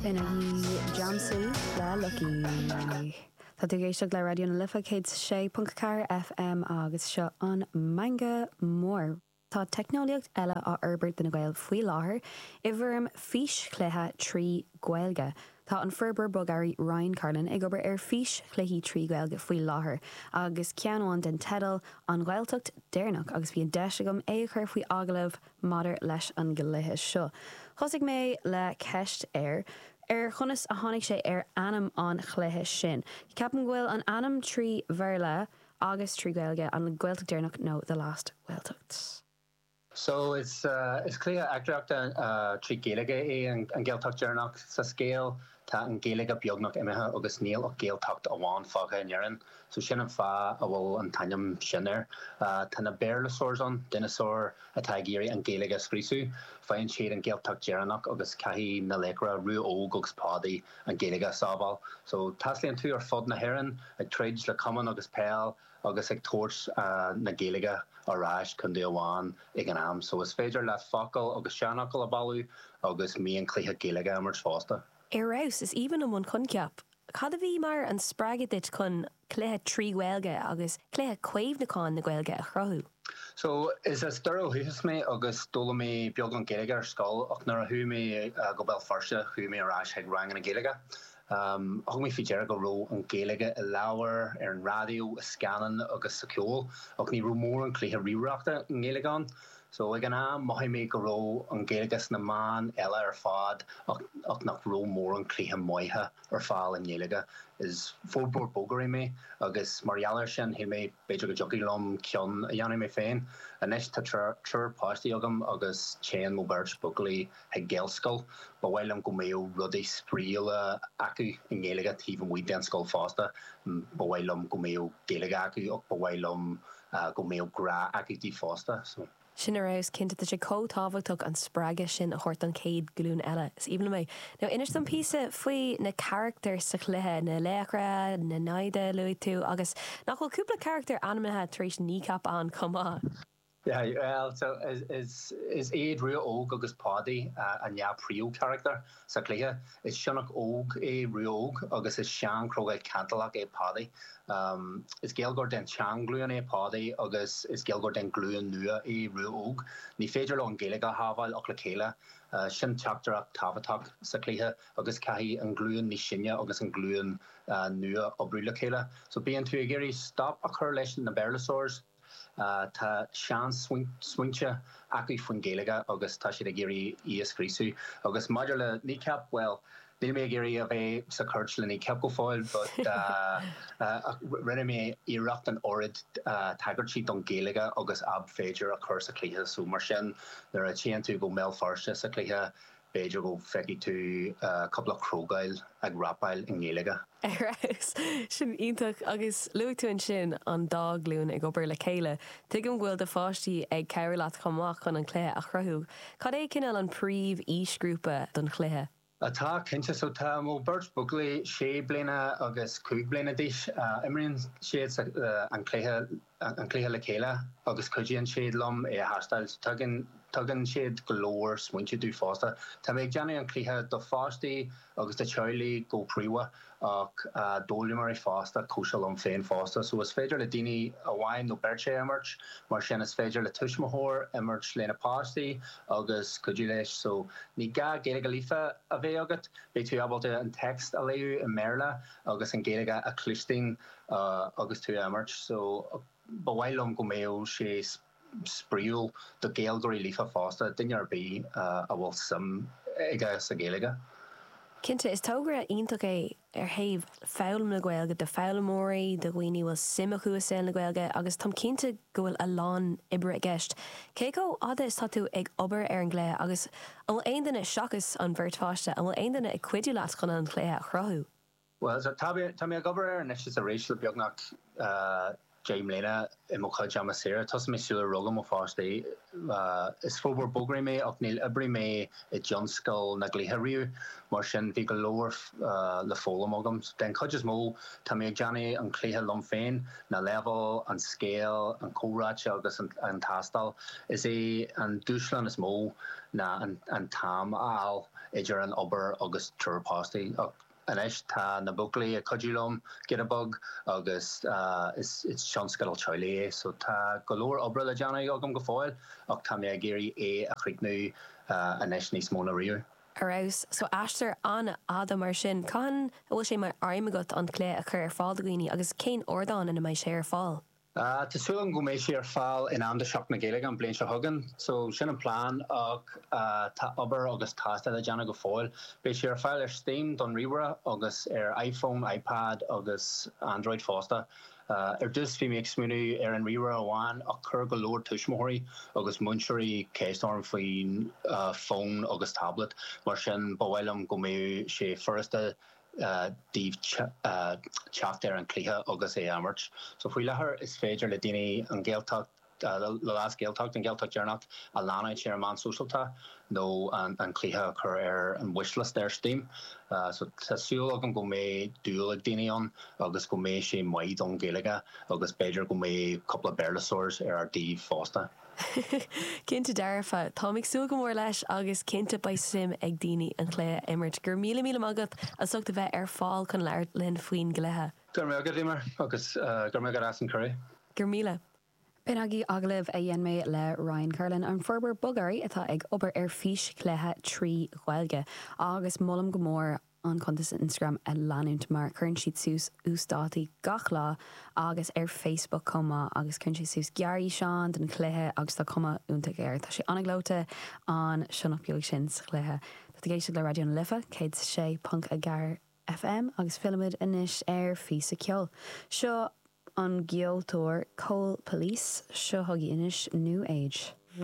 Ina dhiaidh geansaí le Lucky. Tá tú ag éisteacht le Raidió na Life 106.4 FM agus seo an Meangadh Mór. Tá teicneolaíocht eile á fhorbairt do na Gaeil faoi láthair i bhfoirm físchluiche trí Ghaeilge. Tá an forbróir bogearraí Ryan Carlin ag obair ar físchluichí trí Ghaeilge faoi láthair agus ceann amháin den teideal An Ghaeltacht Deireanach agus bhí an deis agam é a chur faoi agallamh Maidir leis an gcluiche seo, thosaigh mé le ceist air, ar chonas a tháinig sé ar ainm an chluiche sin. Ceapaim go bhfuil an ainm trí Bhéarla agus trí Gaeilge, An Ghaeltacht Deireanach nó The Last Gaeltacht. So, is cluiche eachtraíochta trí Gaeilge é An Ghaeltacht Deireanach. Sa scéal, Tá an Ghaeilge beagnach imithe agus níl ach Gaeltacht amháin fágtha in Éirinn, so sin an fáth a bhfuil an t-ainm sin air. Tá na béarlasaurs ann, dineasáir atá ag iarraidh an Ghaeilge a scriosadh. Faigheann siad an Ghaeltacht deireanach agus caithfidh na laochra, Rua Óg agus Páidí, an Ghaeilge a sábháil. So, taistealaíonn tú ar fud na hÉireann ag troid le camán agus peil agus ag tabhairt na Gaeilge ar ais contae amháin ag an am so is féidir leat focail agus seanfhocail a bailiú agus mionchluichí Gaeilge a imirt fosta. Ar fheabhas! Is aoibhinn liom an coincheap. Cad a bhí mar an spreagadh duit chun cluiche trí Ghaeilge agus cluiche caomhnúcháin na Gaeilge a chruthú? So, is as Doire ó dhúchas mé agus d'fhoghlaim mé beagán Gaeilge ar scoil ach nuair a chuaigh mé go Béal Feirste chuaigh mé ar ais chuig ranganna Gaeilge Thug mé faoi deara go raibh an Ghaeilge i leabhair, ar an raidió, i scannáin agus sa cheol, ach ní raibh mórán cluiche ríomhaireachta i nGaeilge ann. So, ag an am, mhothaigh mé go raibh an Ghaeilge sna meáin eile ar fad ach nach raibh mórán cluiche maithe ar fáil i nGaeilge. Is forbróir bogearraí mé agus mar gheall ar sin, shíl mé b'fhéidir go dtiocfadh liom ceann a dhéanamh mé féin. Anois, tá triúr páistí agam agus téann mo beirt buachaillí ag Gaelscoil. Ba mhaith liom go mbeadh rudaí spraíúla acu i nGaeilge taobh amuigh den scoil fosta. Ba mhaith liom go mbeadh Gaeilge acu ach ba mhaith liom go mbeadh grá acu di fosta. Sin ar fheabhas cinnte. Tá sé chomh tábhachtach an spreagadh sin a thabhairt don chéad glún eile. Is aoibhinn liom é. Now inis dom píosa faoi na carachtair sa chluiche, na laochra, na naimhde a luaigh tú agus nach bhfuil cúpla carachtar ainmnithe tar éis Kneecap ann chomh maith? Is iad Rua Óg agus Páidí an dhá príomhcharachtar sa chluiche. Is sionnach óg é Rua Óg agus is seanchrogall cantalach é Páidí. Is Gaeilgeoir den tseanghlúin é Páidí agus is Gaeilgeoir den glúin nua é Rua Óg. Ní féidir leo an Gaeilge a shábháil ach le chéile. Sin teachtaireacht tábhachtach sa chluiche agus caithfidh an glúin níos sine agus an glúin nua oibriú le chéile. So bíonn tú ag iarraidh stop a chur leis na Béarlasaurs. Tá seansmaointe acu faoin Ghaeilge agus tá siad ag iarraidh í a scríosadh. Agus maidir le Kneecap, bhuel, níl mé ag iarraidh a bheith sa chúirt le Kneecap go fóill but rinne mé iarracht an oiread tagairtí don Ghaeilge agus ab féidir a chur sa chluiche so mar sin nuair a téann tú go mBéal Feirste sa chluiche B'fhéidir go feicfidh tú cúpla crogall ag rapáil i nGaeilge. Ar fheabhas! Sin iontach! Agus luaigh tú ansin an dá ghlúin ag obair le chéile. Tuigim go bhfuil do pháistí ag cabhrú leat chomh maith chun an cluiche a chruthú. Cad é cineál an príomh-aoisghrúpa don chluiche? Tá, cinnte. So tá mo beirt buachaillí, sé bliana agus cúig bliana d'aois. Imríonn siad an cluiche. an cluiche le chéile agus cuidíonn siad liom é a thástáil. Tugann siad go leor smaointe domh fosta. Tá mé ag déanamh an cluiche do pháistí agus do theaghlaigh go príomha ach d'fhoghlaimeoirí fosta, cosúil liom féin fosta. So is féidir le duine amháin nó beirt é a imirt, mar sin is féidir le tuismitheoir imirt lena páistí agus cuidiú leis. So ní gá Gaeilge líofa a bheith agat, beidh tú ábalta an text a léamh i mBéarla agus an Gaeilge a chluinstin agus tú a imirt so ba mhaith liom go mbeadh sé spraoiúil do Gaeilgeoirí líofa fosta, duine ar bith a bhfuil suim aige sa Gaeilge. Cinnte, is togra iontach é ar thaobh foghlaim na Gaeilge do foghlaimeoirí, do dhaoine a bhfuil suim acu i saol na Gaeilge agus táim cinnte go bhfuil a lán oibre i gceist. Cé chomh fhada is tá tú ag obair ar an gcluiche agus An bhfuil aon duine, seachas an bheirt pháiste, an bhfuil aon duine ag cuidiú leat chun an cluiche a chruthú? Bhuel, so tá mé, tá mé ag obair air anois is arís le beagnach deich mbliana i mo chuid ama saora. Thosaigh mé sular rugadh mo pháistí. Is forbróir bogearraí mé ach níor oibrigh mé i dtionscal na gcluichí riamh, mar sin bhí go leor le foghlaim agam. Den chuid is mó, tá mé ag déanamh an cluiche liom féin na leibhéil, an scéal, an chomhráití agus an tástáil. Is é an dúshlán is mó ná an t-am a fháil idir an obair agus triúr páistí. Ach anois tá na buachaillí ag cuidiú liom, giota beag, agus is tionscadal teaghlaigh é so tá go leor oibre le déanamh agam go fóill ach tá mé ag iarraidh é a chríochnú anois níos mó ná riamh. Ar fheabhas. So aistear an-fhada mar sin. Cathain a bhfuil sé mar aidhm agat an cluiche a chur ar fáil do dhaoine agus cén ardán ina mbeidh sé ar fáil? Tá súil agam go mbeidh sé ar fáil in am do Sheachtain na Gaeilge an bhliain seo chugainn. So sin an plean ach tá obair agus tástáil le déanamh go fóill. Beidh sé ar fáil ar Steam don ríomhaire agus ar iPhone, iPad agus Android fosta. Ar dtús bhí mé ag smaoineamh ar an ríomhaire amháin ach chuir go leor tuismitheoirí agus múinteoirí ceist orm faoin bhfón agus tablet, mar sin ba mhaith liom go mbeadh sé furasta daoibh teacht ar an cluiche agus é a imirt. So faoi láthair is féidir le daoine An Ghaeltacht, gabh mo leithscéal, An Gael Deireanach a leanstan ar na meáin shóisialta nó an cluiche a chur ar an wishlist ar Steam. So tá súil agam go mbeidh dúil ag daoine ann agus go mbeidh sé maith don Ghaeilge agus b'fhéidir go mbeidh cúpla Béarla-saurs ar ár dtaobh fosta. Cinnte dearfa. Táim ag súil go mór leis agus cinnte beidh suim ag daoine an cluiche a imirt. Go raibh míle míle maith agat as ucht a bheith ar fáil chun labhairt linn faoin gcluiche. Go raibh maith agat, Eimear, agus go raibh maith agat as an cuireadh. Go raibh míle. B'in agaibh agallamh a dhein mé le Ryan Carlin, an forbróir bogearraí atá ag obair ar físchluiche trí Ghaeilge, agus molaim go mór an cuntas Instagram a leanúint mar cuireann siad suas uasdátaí gach lá, agus ar Facebook chomh maith agus cuireann sé suas gearrfhíseáin den chluiche agus tá cuma iontach air. Tá sé an-ghleoite an sionnach beag sin sa chluiche. Tá tú ag éisteacht le Raidió na Life 106.4 FM agus fillimid anois ar phíosa ceoil. Seo ón gceoltóir Cole Pulice, seo chugaibh anois New Age.